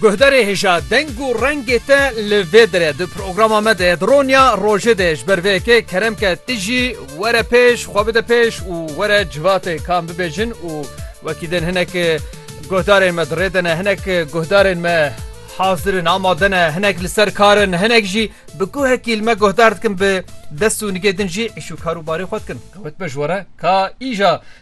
Guhdarê hêja deng û rengê te li vê dire di programa me de di ronya rojê de ji ber vê yekê kerem ke ti jî were pêş xwe bide pêş û were civatê kan bibêjin û wekî din hinek guhdarên me di rê de ne hinek guhdarên me hazir in amade ne hinek li ser kar in hinek jî bi guhekî li me guhdar dikin bi dest û nigê din jî îş û karûbarê xwe dikin ewt be ji were ka îja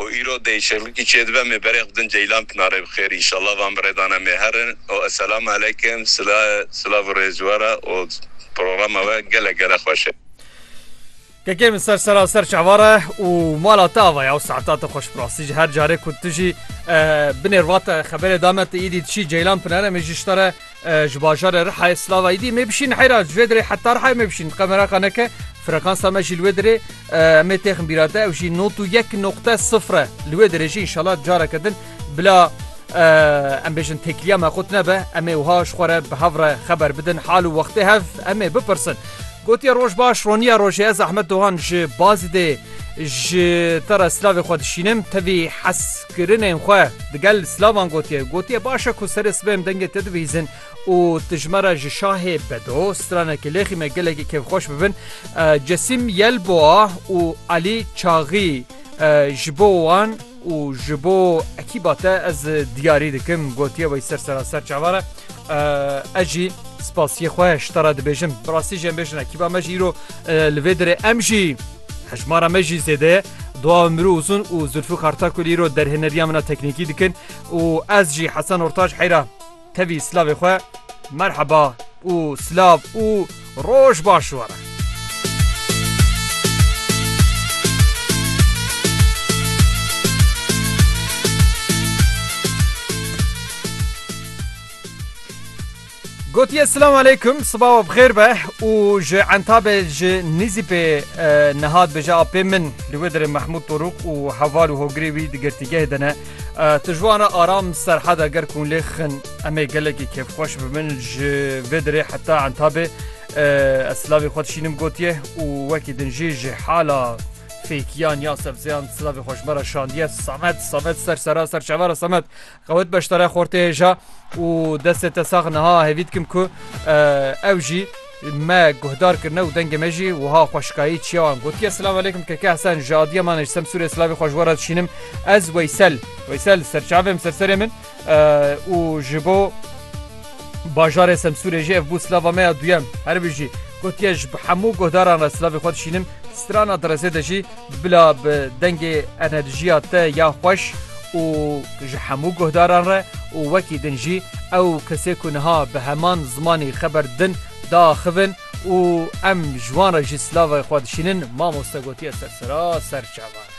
û îro dê îşerekî çêdibe mê berê xwe din Ceylan Pinarê bi xêr înşallah van bi rêdana mê her in û esselam aleykm sila silav û rêz ji we re û programa we gelek gelek xweş e. Kekê min ser sera ser çava re û mala te ava ya û saeta te xweş bi rastî ji her carê ku tu jî binêr vate xeberê dame tu îdî tu çî Ceylan Pinare min jî ji te re Ji bajarê Rihayê Slavayî dî mê bişîn heyra ji vê dirê heta Rihayê mê bişîn qe meraka neke frekansa me jî li wê dirê emê têxin bîra te ew jî not û yek noqte sifr e li wê dirê jî inşallah careke din bila em bêjin têkiliya me xut nebe emê wiha ji xwe re bi hev re xeber bidin hal û wextê hev emê bipirsin gotiye roj baş roniya rojê ez Ahmet Dohan ji bazî dê ji te re silavê xwe dişînim tevî hes Kirinên xwe digel silavan gotiye. Gotiye baş e ku serê sibê em dengê te dibihîzin û tu ji me re ji şahê bedo, stranekî lêxî me gelekî kêfxweş bibin. Cesîm Yelboa û Elî Çaxî ji bo wan û ji bo ekîba te ez diyarî dikim gotiye wey ser seraser çavan e. Ez jî spasiyê xwe ji te re dibêjim. Bi rastî jî em bêjin ekîba me jî îro li vê dirê em jî Hejmara me jî zêde ye. Dua Umru Uzun û Zulfîkar Takul îro derhêneriya min a teknîkî dikin û ez jî Hesen Ortaç heyra tevî silavê xwe merheba û silav û roj baş were. Gotiye silam aleykum siba we bixêr be û ji entabê ji nîzîpê niha dibêje apê min li wê derê Mehmûd Torûk û heval û hogirê wî di girtîgehê de ne. Tu ji wan re aram serheda ger ku hûn lê xin em ê gelekî kêfxweş bibin ji vê derê heta entabê ez silavê xwe dişînim gotiye û wekî din jî ji hala fêkiyan ya sebzeyan silavê xweşmera şandiye Samet Samet ser sera ser çavara Samet Xewt beşdara xortê hêja û destê te sax niha hêvî dikim ku ew jî me guhdar kirine û dengê me jî wiha xweşikayî çiya wan gotiye Silav aleykum keke Hesen ji adiya man ji Semsûrê silavê xwe ji we re dişînim ez Weysel Weysel serçavê min ser serê min û ji bo bajarê Semsûrê jî ev bû silava me ya duyem herbijî gotiye ji bi hemû guhdaran re silavê xwe dişînim strana direzê de jî Bila bi dengê enerjiya te ya xweş û ji hemû guhdaran re û wekî din jî ew kesê ku niha bi heman zimanî xeber didin diaxivin û em ji wan re jî silavê xwe dişînin, mamoste gotiye sersera ser çavan e.